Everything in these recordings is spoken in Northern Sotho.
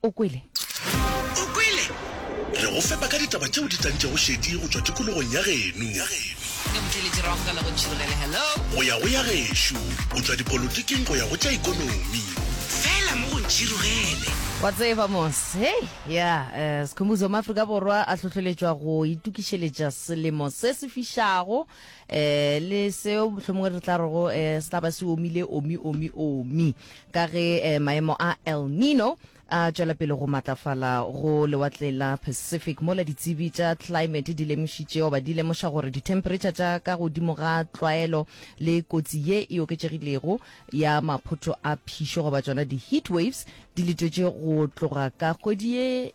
O kwele? O kwele? Re go fepa ka ditaba tšeo di tlantšego šedi go tšwa tikologong ya geno. Go ya go ya gešo, go tšwa dipolotiking go ya go tša ikonomi. Fela mo go ntšhirugele. Wa tseba mos, hei, ya, eh, Sikhumbuzo maAfrika Borwa a hlohleletšwa go itukišeletša selemo se se fišago, eh, le seo mohlomongwe re tla rego eh, se tla ba se omile, omi, omi, omi. Ka ge maemo a El Nino a tšwela pele go matlafala go lewatleng la Pacific, mola ditsebi tša tlaemete di lemošitše goba di lemoša gore dithempheretšha tša ka godimo ga tlwaelo le kotsi ye e oketšegilego ya maphotho a phišo goba tšona di-heat waves di letwetše go tloga ka kgwedi ye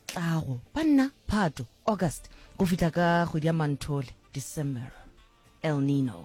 tlago, banna, Phato, August, go fihla ka kgwedi ya Manthole, December. El Nino.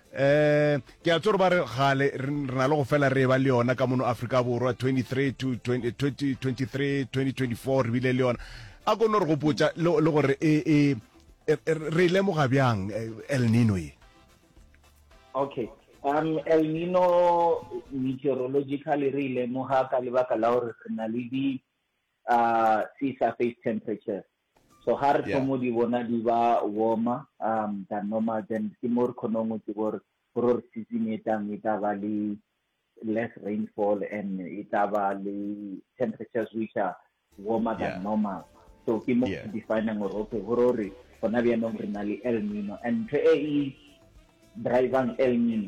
Um ke a tse gore ba re gale re re na le go fela re ba le yona ka mono afrika borwa 23 to 20 20 23 2024 re bile le yona a kono re gopotsa le le gore e e e- e- re e lemoga bjang eh, el nino ye okay um el nino meteorologically re e lemoga ka lebaka la gore re na le di uh, sea surface temperature So ga re thomo di bona di ba warmer um than normal then ke mo re khonong go tseba gore gore re season e tlang e tla ba le less rainfall and e tla ba le temperatures which are warmer than normal so ke mo ke definang gore okay gore gore gona bjanong re na le el nino and ntho e e drivang el nino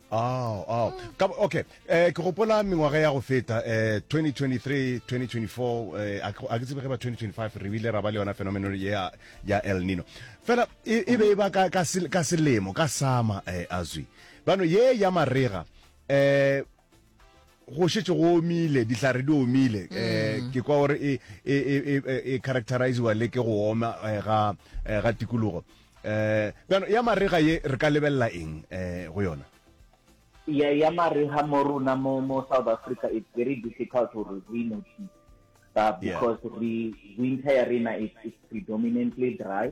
Ao, ao. Ka, okay. Eh, ke gopola mengwaga ya go feta eh 2023, 2024 eh a ke- a ke tsebe ge ba 2025 re bile ra ba le yona phenomenon ya ya El Nino. Fela e e be e ba ka ka sel- ka selemo ka sama eh azwi. Bano ye ya marega eh go šetše go omile dihlare di omile um ke kwa gore e, e, e, e, e characteriziwa le ke go oma eh, ga eh, ga tikologo um bjano ya marega ye re ka lebelela eng um go yona ya ya mariga mo rona mo mo south africa it's very difficult gore re notice but Yeah. because re winter ya rena is is predominantly dry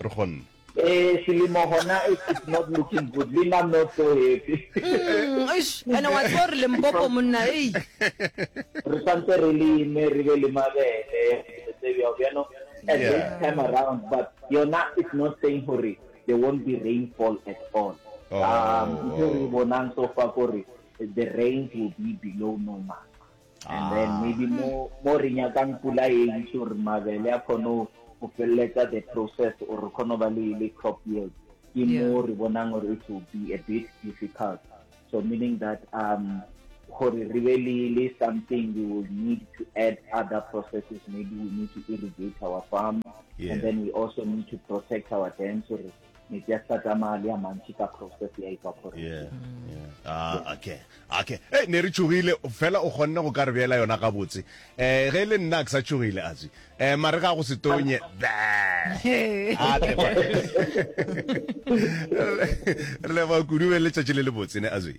re kgonne Eh, selemo gona it is not looking good. Lean, I'm not so happy. Mm, eish, ene wa tseba gore lempopo monna ei Re santse re leme, re be le mabele, dilo tse bjao, you know. At Yeah. this time around, but yona is not saying gore there won't be rainfall at all. Oh, Um, ntho e re oh. bonang so far kore the rains will be below normal. And then maybe mo mo re nyakang pula e ntši gore mabele a kgone go feleletsa the process or re kgone ba le le crop yield ke mo re bonang gore it will be a bit difficult so meaning that um gore re be le le something we will need to add other processes maybe we need to irrigate our farm yeah. and then we also need to protect our dams so metsi a sa tsamaya le a mantši ka process ya evaporate yeah, yeah. Ah, okay okay hey, eh, ne re tšogile fela o kgonne go ka re beela yona gabotse um ge e le nna ke sa tšogile atswi um eh, mare ga go se tonye re leba kudu be letšatši le le botse ne atswi